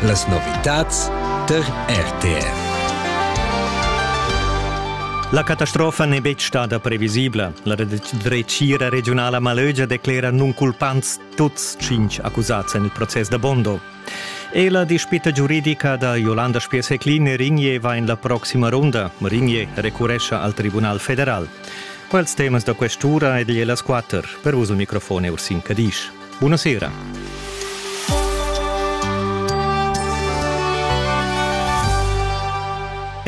Las novitads tar RTF. La catastrofa n'è betg stada previsibla. La dretgira regiunala Malögia declera nunculpants tuts cinq accusads en il process da Bondo. E la dispita giuridica da Jolanda Spies-Heclin Ringier va en la proxima runda. Ringier recurescia al Tribunal federal. Quels temas da questura ed las quatter. Per vos il microfon è Ursin Cadisch. Buna sera.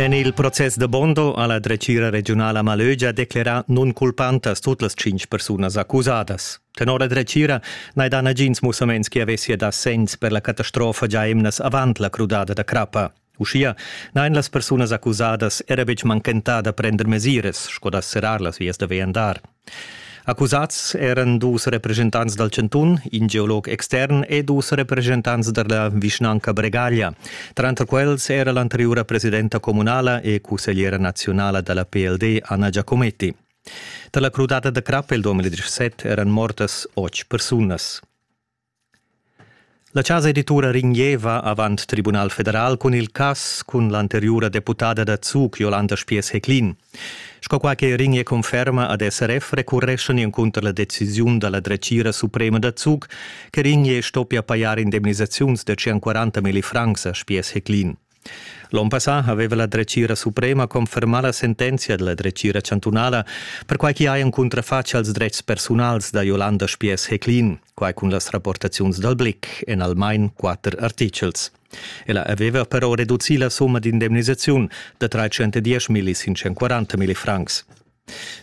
En il process da Bondo ha la dretgira regiunala Malögia declerà nunculpantas tut las tschintg persunas accusadas. Tenor la dretgira n'hai dà nagins mussaments che avessia dà senns per la catastrofa già emnas avant la crudada da crappa. Uschia n'hain las persunas accusadas era betg manchentà da prender mesiras sco da serrar las vias da viandar. Accusads eran dus represchentants dal chantun, in geolog extern e dus represchentants da la vischnanca Bregaglia. Tranter quels era l'anteriura presidenta communala e cussegliera naziunala da la PLD Anna Giacometti. Tar la crudada da crap il 2017 eran mortas otg persunas. La chasa editura ringieva avant tribunal federal cun il cass cun l'anteriura deputada da Zug Jolanda Spiess-Heclin. Sco quai che Ringe conferma ad SRF recurreschan encunter la decisiun da la dretgira suprema da Zug che Ringe stoppia pajar indemnisaziuns da 140 milli francs a Spiess-Heclin. L'onn passà haveva la dretgira suprema confermà la sentenzia della dretgira chantunala, perquai chi hajan cuntrafatg als dretgs persunals da Jolanda Spiess-Heclin, quai cun las rapportaziuns dal Blick en almain quatter artichels. Ella aveva però reducì la summa d'indemnisaziun da 310 milli 540 milli francs.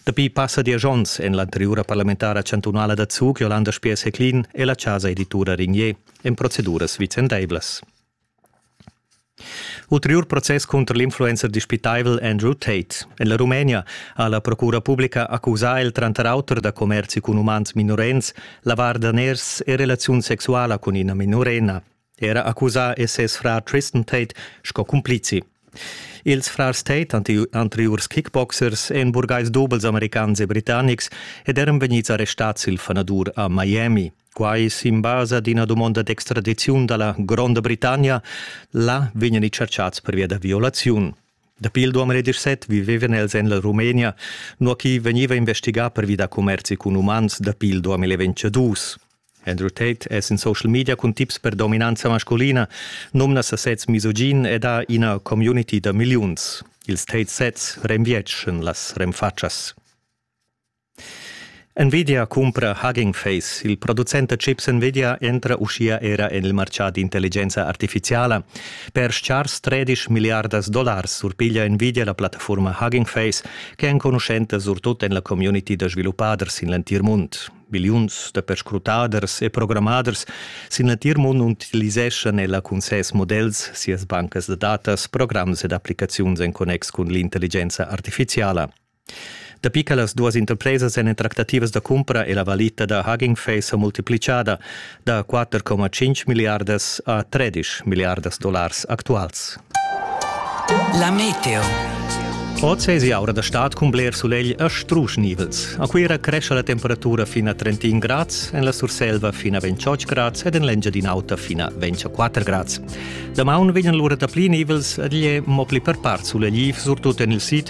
Dapi passa diesch onns en l'anteriura parlamentara chantunala da Zug Jolanda Spiess-Heclin è la chasa editura Rignier en proceduras vicendaivlas. Ulteriur process cunter l'influencer dispitaivel Andrew Tate. En la Rumenia ha la procura publica accusà el tranter auter da commerzi cun umans minorens, lavar daners e relaziun sexuala cun ina minorena. Era accusà è ses frar Tristan Tate sco cumplizi. Ils frars Tate, anteriurs kickboxers, èn burgais dubels americans e britannics ed eran vegnids arrestads il fanadur a Miami. Quai es in basa d'ina dumonda d'extradiziun da la Gronda Britannia. Là vegnan i tscherchats pervia da violaziun. Dapi il 2017 vivevan els en la Rumenia, nua chi vegniva investigà pervi da commerzi cun umans dapi il 2022. Andrew Tate es in social media cun tips per dominanza masculina, nomna sasez misogin ed ha ina community da milliuns. Ils Tate sets renvietschan las renfatschas. Nvidia cumpra Hugging Face. Il producent da chips Nvidia entra uschia era en il martgà d'intelligenza artifiziala. Per schars 13 milliardas dollars surpiglia Nvidia la plattafurma Hugging Face che è enconuschenta surtut en la community da sviluppaders sin l'entir mund. Biliuns da perscrutaders e programmaders sin l'entir mund utiliseschan ella cun ses models, sias bancas da datas, programs ed applicaziuns en connex cun l'intelligenza artifiziala. Dapi che las duas interpresas èn en tractativas da cumpra è la valita da Hugging Face sa multiplichada da 4,5 milliardas a 13 milliardas dollars actuals. La meteo. Oz è aura da stad cun bler sulegl e strusch nivels. A Cuira cresce la temperatura fino a 31 grads, en la Surselva fino a 28 grads ed en l'Engiadin'Auta fino a 24 grads. Damaun vegnan lura dapli nivels ed igl è mo pli per part sulegl, surtut en il sid,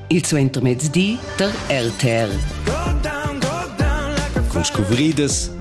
Il suentermezdi tar RTL. Con scuvridas